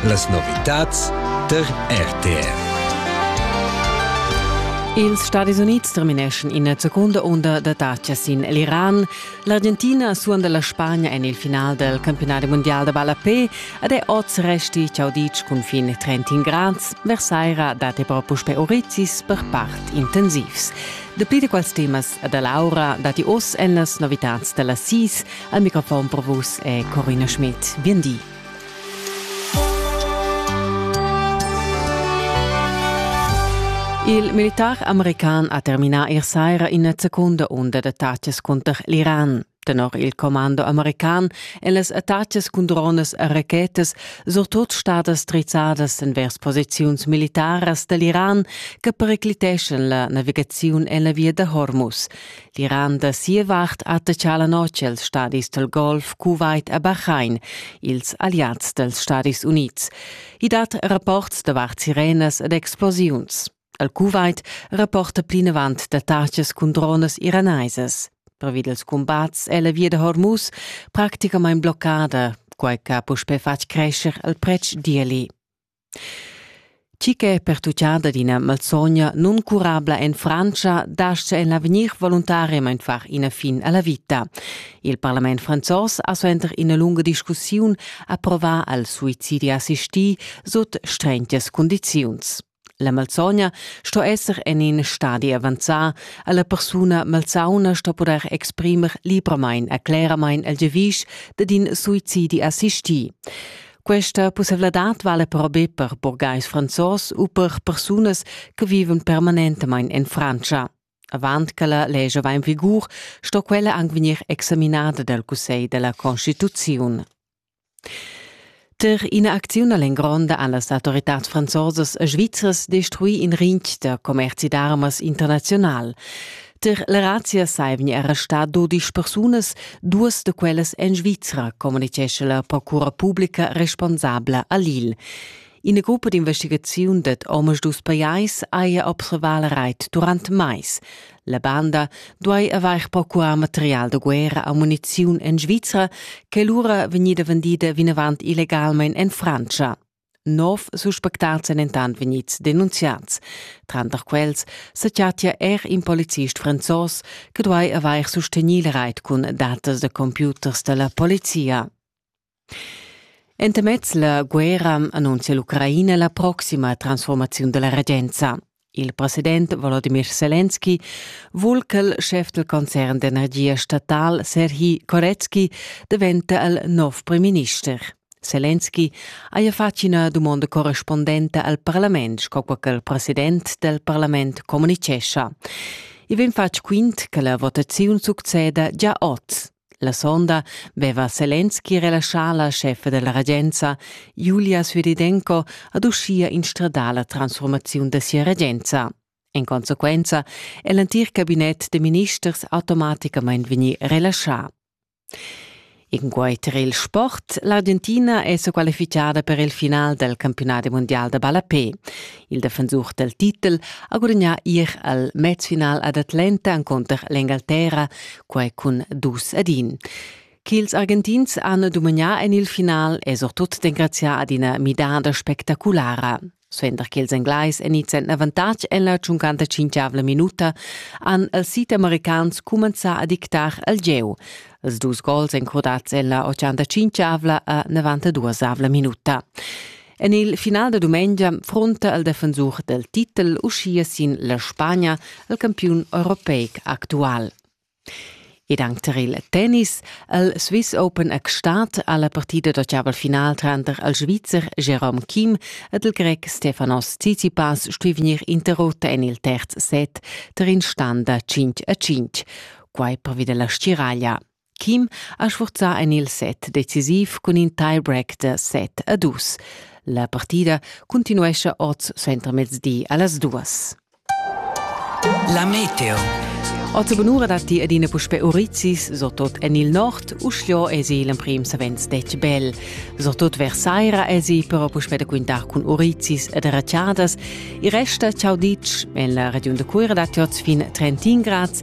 Las novitads der RTR. Ils Stadis Unids termineschan ina secunda unda d'attacca sin l'Iran. L'Argentina suonda la Spagna en il final del campionat mondial da ballapé ed è oz resti ciauditsch cun fin 30 grads. Versaira dat però puspè orizis per part intensivs. Dapli da quels temas da Laura datti oz en las novitads da las SIS. Al microfon per vus è Corina Schmidt. Bien di. Il militar american ha terminà ier saira ina secunda unda d'attacas cunter l'Iran. Tenor il commando american èn las attacas cun dronas e rachetas surtut stadas drizzadas envers posiziuns militaras da l'Iran che pericliteschan la navigaziun en la via da Hormuz. Tiran da sia vart attacca la notg els stadis del Golf, Kuwait e Bahrain, ils alliads dels Stadis Units. I dat rapports davart sirenas ed explosiuns. El Kuwait rapporta plinavant d'attacas cun dronas iranaisas. Pervi dels combats è la via de Hormuz practicamain bloccada, quai che ha puspè fatg crescere il pretsch d'Ieli. Tgi che è pertutgada d'ina malsogna nuncurabla en Frantscha dastga en l'avegnir voluntariamain far ina fin a la vita. Il parlament franzos ha suenter ina lunga discussiun approvà al suicidi assistì sut strentas cundiziuns. La malsogna sto esser en in stadi avanzà, alla persuna malsauna sto poder exprimer libramain e cleramain il giavisch dad in suicidi assistì. Questa pussevladad vala però be per burgais franzos u per persunas che vivan permanentamain en Frantscha. Avant che la legge va in vigur, sto quella anche vegnir examinada dal Cussegl della Constituzione. Per ina acziun all'engronda han las autoritats franzosas e svizras destruì in rinch da commerci d'armas internazional. Der la razia sai vegni arrestà dodisch persunas, duas da quellas en Svizra, communitgescha la procura publica responsabla a Lille. Ina gruppa d'investigaziun dad omas dus pajais haja observà la reit durant mais. La banda duai avair procurar material da guerra a muniziun en Svizra, che lura vegnida vendida vinavant illegalmain en Francia. Nov suspectats èn dentant vegnids denunziads. Tranter quels sa chattia er in policist franzos che duai avair sustegnì la rait cun datas da computers da la polizia. Entamez la guerra annunzia l'Ucraina la proxima transformaziun da la regenza. Il president Volodymyr Selenski vul ch'el schef del concern d'energia statal Serhi Koretsky diventa il nov premierminister. Selenski haja fatg ina dumonda correspondenta al parlament, sco che il president del parlament communicescha. I vegn fatg quint che la votaziun succeda già oz. La sonda veva Selenski relaschà la scheffa della regenza, Julia Südidenko, ad uschia instradar la transformaziun da sia regenza. In consequenza è l'entir cabinet de ministers automaticamain vegnì relaschà. In quai tar il sport, l'Argentina è sa qualifichada per il final del campionat mondial da ballapé. Il defensur dal titel ha gudagnà ir al mezfinal ad Atlanta encunter l'Engalterra, quai cun dus ad in. Ch'ils Argentins han dumagnà en il final è surtut d'engraziar ad ina midada spectaculara. Suenter che ils Englais inizian avantatg en la 55 minuta, han els südamericans cumenzà a dictar al gieu. Els dus gols encrudads en la 85 a 92 minuta. En il final da dumengia fronta il defensur del titel uschia sin la Spagna al campiun europeic actual. Ed anche tar il tennis, il Swiss Open è stat alla partita d'ottaval final tranter il Svizzer Jerome Kim ed il Grec Stefanos Tsitsipas stui vegnir interrotta en il terz set tar in stand da 5 a 5, quai pervi della stiraglia. Kim ha sfurzà en il set decisiv cun in tie-break da set a dus. La partida cuntinuescha oz suentermezdi a las duas. La Meteo. Oz bunura datti adina puspè urizis, so tot en il nord, uschio esi l'emprim savens detg bel. So tot vers saira esi però puspè da quintar cun urizis ed raciadas. Il resta, ciao ditg, en la regiun da Cuira datti oz fin 31 grads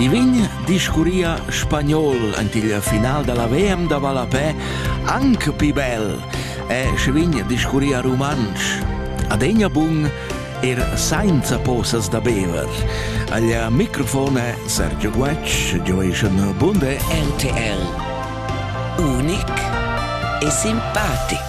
I vegn discurria spagnol ant il final da la VM da ballapè anc pi bel e schi vegn discurria rumantsch. Adegna bun er sainza posas da bever. Agl microfon è Sergio Guetsch, gioeschan bunde RTL. Unic e simpatic.